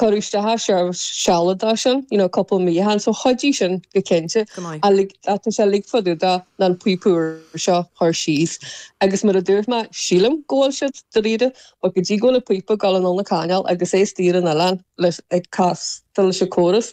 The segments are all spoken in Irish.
cuireadh isteach ar seirbhís sealadach sin, you know, cúpla mí shin, so chuidigh sin go cinnte. Go maith. Ach like, tá sé uilig fá dtaobh den píopa úr seo a chur síos. Agus mar a dúirt mé, sílim go bhfuil siad dáiríre, but go dtí go bhfuil an píopa ag dul anonn an cainéal agus é istigh ar an oileán leis, ag cas, leis an córas,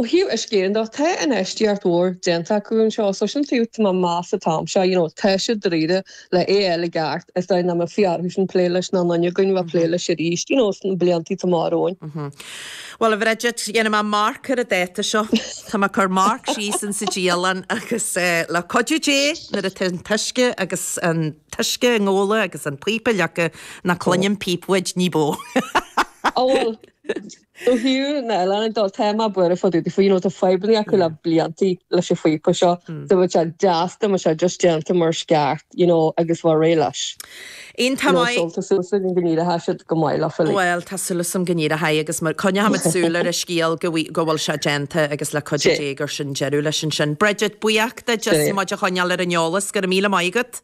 Ó thaobh uisce de, tá infheistíocht mhór déanta acu anseo so sin taobh tá mé ag meas an t-am seo, you know, tá siad dáiríre le é a fháil i gceart sa dóigh nach mbeidh orthusan plé leis ná duine againn bheith plé leis arís, you know, sna bliantaí atá amach romhainn. Bhuel, a Bhridget, dhéanfaidh mé marc ar an dáta seo. Tá mé ag cur marc síos in sa dialann agus le cuidiú Dé nuair atá an t-uisce agus an t-uisce i nGabhla agus an píopa leagtha ná cluinim píopa uait níos mó. Ó bhuel. Ó thaobh na n-oileánaigh de, tá mé buartha fá dtaobh daofa, you know, tá fadhbanna acu le blianta leis an phíopa seo, so bheadh sé deas dá mbeadh sé just déanta mar is ceart, you know, agus a bheith réidh leis. Aon You know, so, tamaill. tá súil agam go n-éireoidh sé go maith leofa, like. Bhuel, tá súil agam go n-éireoidh agus mar, coinneoimid súil ar an scéal go bhfuil, go bhfuil sé déanta agus le cuidiú Sin. Dé gur sin deireadh leis ansin. Bridget, buíoch díot Sin just é. as muid a choinneáil ar an eolas, go raibh míle maith agat.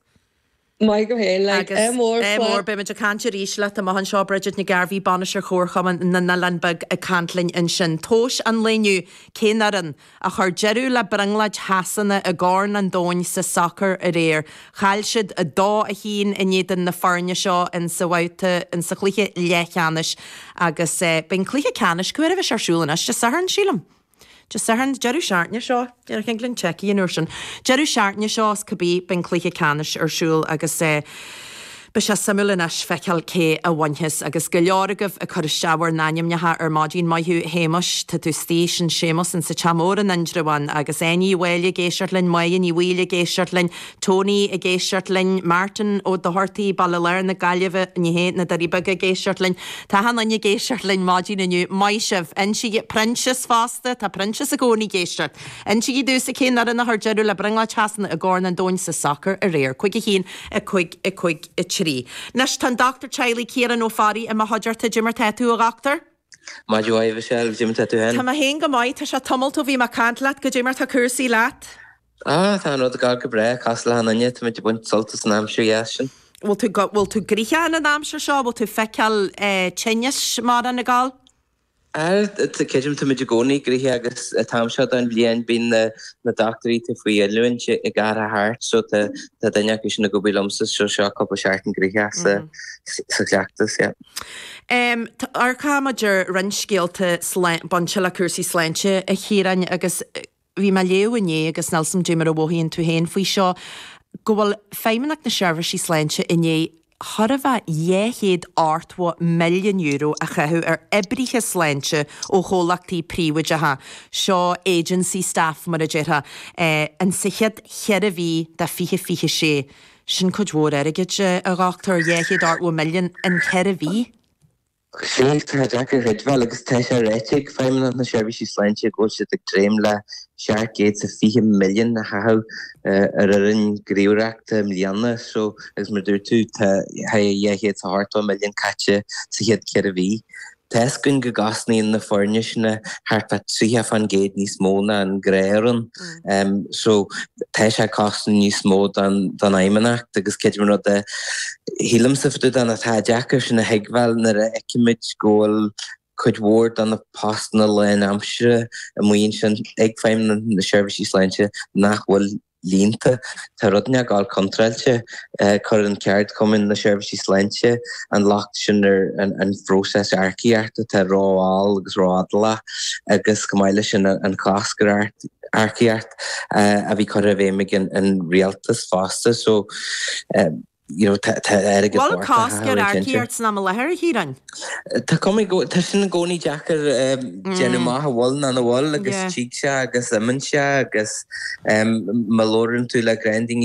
Maith thú féin, like, Agus, MR eh, flaith. mór, beimid ag caint arís leat amach anseo, Bridget Nic Gairbheith, Bainisteoir Chomharchumann na nOileán Beag ag caint linn ansin. Tomhais an lae inniu, cén fhoireann a chuir deireadh le brionglóid Shasana i gCorn an Domhain sa sacar aréir? Chaill siad 2, 1 in éadan na foirne seo in sa bhabhta, in sa chluiche leathcheannais agus, eh, beidh an cluiche ceannais, cén uair a bheas sé ar siúl anois? Dé Sathairn, sílim? Dé Sathairn, deireadh seachtaine seo, déarfainn go Glenn Checkie an uair sin, deireadh seachtaine seo is cibé beidh an cluiche ceannais ar siúl agus beidh sé suimiúil anois feiceáil cé a bhainfeas agus go leor agaibh ag cur isteach bhur n-ainmneacha ar maidin, maith thú Shéamais, tá tú istigh, sin Séamus insa Teach Mór in Indreabhán agus Áine Uí Mháille ag éisteacht linn, Moya Ní Bhaoill ag éisteacht linn, Tony ag éisteacht linn, Martin Ó Dochartaigh, Baile Láir na Gaillimhe, ní hé, na Doirí Beaga ag éisteacht linn. Táthán uinn ag éisteacht linn maidin inniu. Maith sibh. Insígí, Proinsias fosta, tá Proinsias i gcónaí ag éisteacht. Insígí domhsa cén fhoireann a chuir deireadh le brionglóid Shasana i gCorn an Domhain sa sacar aréir. Cúig a haon, a cúig, a cúig a trí. Anois, tá an Dochtúir Teaghlaigh, Ciarán Ó Fearraigh, i mo chuideachta. Dé mar tá tú, a Dhochtúir? Maith thú a Mhichelle, dé mar tá tú Tá féin? mé féin go maith. Tá sé tamalt ó bhí mé ag caint leat. Goidé mar tá cúrsaí leat? Á, tá an rud ag gabháil go breá, cosúil le hachan duine, táimid ag baint sult as an aimsir dheas sin. Bhfuil tú, bhfuil tú gnoitheach in an aimsir seo, bhfuil tú feiceáil tinneas mórán ag gabháil? Á, creidim táimid i gcónaí gnoitheach agus an t-am seo den bhliain bíonn na, na dochtúirí atá faoi oiliúint ag athrú thart so tá, tá duine acu sin ag obair liomsa so seo cúpla seachtain gnoitheach sa, sa chleachtas, yeah. Em, tá, amharcfaidh muid ar roinnt scéalta slán, bainte le cúrsaí sláinte a Chiaráin agus. bhí mé ag léamh inné agus nil 's agam cad é mar a mhothaíonn tú féin faoi seo, go bhfuil Feidhmeannacht na Seirbhísí Sláinte i ndiaidh chóir a bheith dhá chéad ochtó milliún euro a chaitheamh ar oibrithe sláinte ó chomhlachtaí príobháideacha, seo agency staff mar a déarfá, an sa chéad cheithre mhí de fiche a fiche sé. Sin cuid mhór airgid, a Dhochtúir, dhá chéad ochtó milliún in ceithre mhí. Agus sin é, tá sé deacair a chreidbheáil agus tá sé ráite ag Feidhmeannacht na Seirbhísí Sláinte go bhfuil siad ag dréim le seacht gcéad is fiche milliún a chaitheamh ar fhoireann gníomhaireachta na bliana seo agus mar a dúirt tú tá cheana dhá chéad seacht is ochtó milliún caite sa chéad ceithre mhí. Tá fhios againn go gcosnaíonn na foirne sin thart fá tríocha fán gcéad níos mó ná an ghnáthfhoireann. So tá sé ag cosnú níos mó don Fheidhmeannacht agus sé an rud a shílimse fá dtaobh de ná tá sé deacair sin a thuigbheáil nuair a fheicimid go bhfuil cuid mhór do na postanna lánaimseartha amuigh ansin ag Feidhmeannacht na Seirbhísí Sláinte nach bhfuil líonta. Tá rud inteacht contráilte agus cuireann ceardchumainn na Seirbhísí Sláinte an locht sin ar an phróiseas earcaíochta atá ró-mhall agus ró-fhadálach agus chomh maith leis sin an cosc ar earcaíocht a bhí curtha i bhfeidhm ag an Rialtas fosta. So. You know, tá tá. Agus an bhfuil fós cosc ar earcaíocht san am i láthair, a Chiaráin? Tá sin i gcónaí, tá sin i gcónaí deacair a dhéanamh amach an bhfuil nó nach bhfuil agus tig sé agus imíonn sé agus má labhrann tú le roinnt daoine.